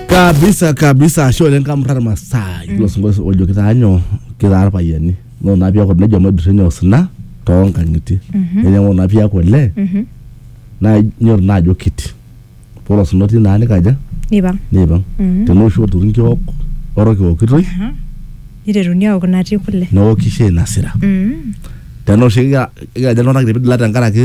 kabisa kabisa ashe oleng kamurrar masaa ilo sinkolio ojo kitaa nyoo kitaa irpayiani noo naa piaku nejo maidurra nyoo osina toonkang'itie nenyang'u naa piaku olee naa inyoru naa ajo kiti ore osina otii naa nikaja nipang neipang tenaa oshi oturi nkiok orok eokitoi niteruni aok natii kule neoki shai nasira Mm. tenaa oshi kikira kikiraja iltung'anak kiti pidila tenkaraki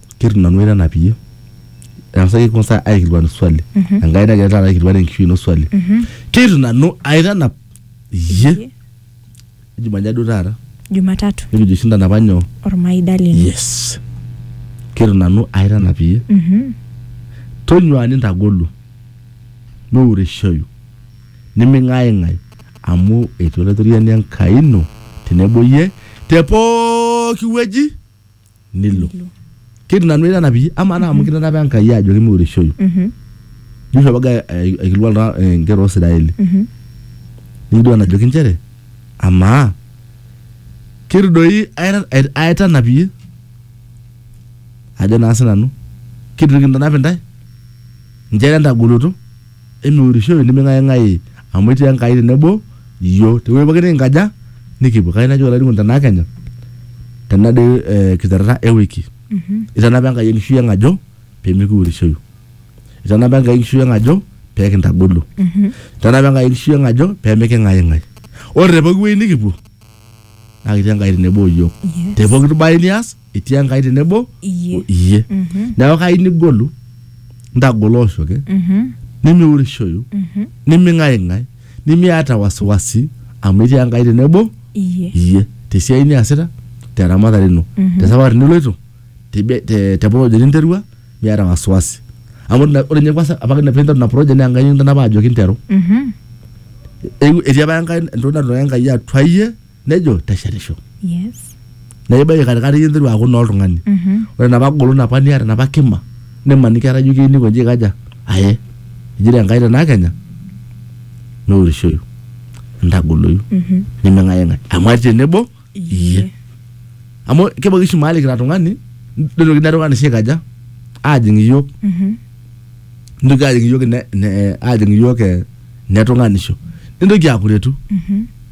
Keitu nanu aitanapie eng'asaki kwanza aikilikuanu swali Enkai nagira taata aikilikuan enkishui ino swali keitu nanu aitanap iyie Jumanne duo taata Jumatatu nikijo oshi intanapa nyoo ormaida lino. yes keitu nanu aitanap iyie tonyua nintagolu miureishoyu niming'aing'ai amu etii Olaitoriani Enkai ino tenebo iyie te pooki wueji. nilo ketii nanu enana pii ama naa amu kitanapa Enkai ajo kimiurishoyu Mhm. Joshua baga aikilikuan iltung'anak eh, inkera Oosiraeli Mhm. nikidua enajoki inchere amaa ketu doi aita- ait- aitanap iyie ajo naa sinanu ketu kintanap intae inchere entagoloto Emiurishoi niming'aing'ai amu etii Enkai tenebo iyio. Te wueji pooki nikinkaja nikipuo. Kayieu najoki olainining'oni tenaa Kenya tena dei eh kiterrera e wiki itanapa Enkai enkishui ang ajo pee mikiurishoyu. Itanapa Enkai enkishui ang ajo pee kintagolu. Itanapa Enkai enkishui ang ajo pee miking'aing'ai. Ore te pooki wueji nikipuo naa ketii Enkai tenebo o iyiook. Te pooki bae nias etii enkai tenebo Iyie. o iyie neeku kai nigolu ntagolo oshoke nimiurishoyu niming'aing'ai nimiata wasiwasi amu etii enkai tenebo Iyie. iyie tesiai niasita teramatare ino tesafari niloito tebe- te te project ninterua miata wasiwasi amu ina- ore ninye kwanza apake pinteru ina project naa enkai nikintanapa ajoki nteru Mhm. Eewuo- etii apa enkai entoki natipika enkai atua iyie nejo teshetisho Yes. na ibaiki katikati ninteru aaku naa oltung'ani Mhm. ore napa golon apa niata napa kima nimaniki etaa ijo keyieu nikonji aikaja aye ejito enkai tenaa kenya nourishoyu ntagoloyu Mhm. niming'aing'ai amu atii tenebo iyie amu kebaiki oshi mahali kira tung'ani nitoki ina tung'ani sii aikaja aajing iyiok Mhm. nitoki ajing iyiok ine- ine- ajing iyiok eh, netung'anisho nintoki akuretu Mhm.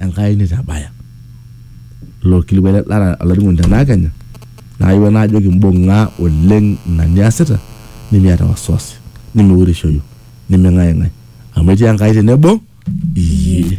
Enkai neitabaya ilo kilikuai le Dara olainining'oni tenaa Kenya naayewuo naajoki mbung'a oleng ina niasita nimiata wasiwasi nimiurishoyu niming'aing'ai amu etii Enkai tenebo iyie.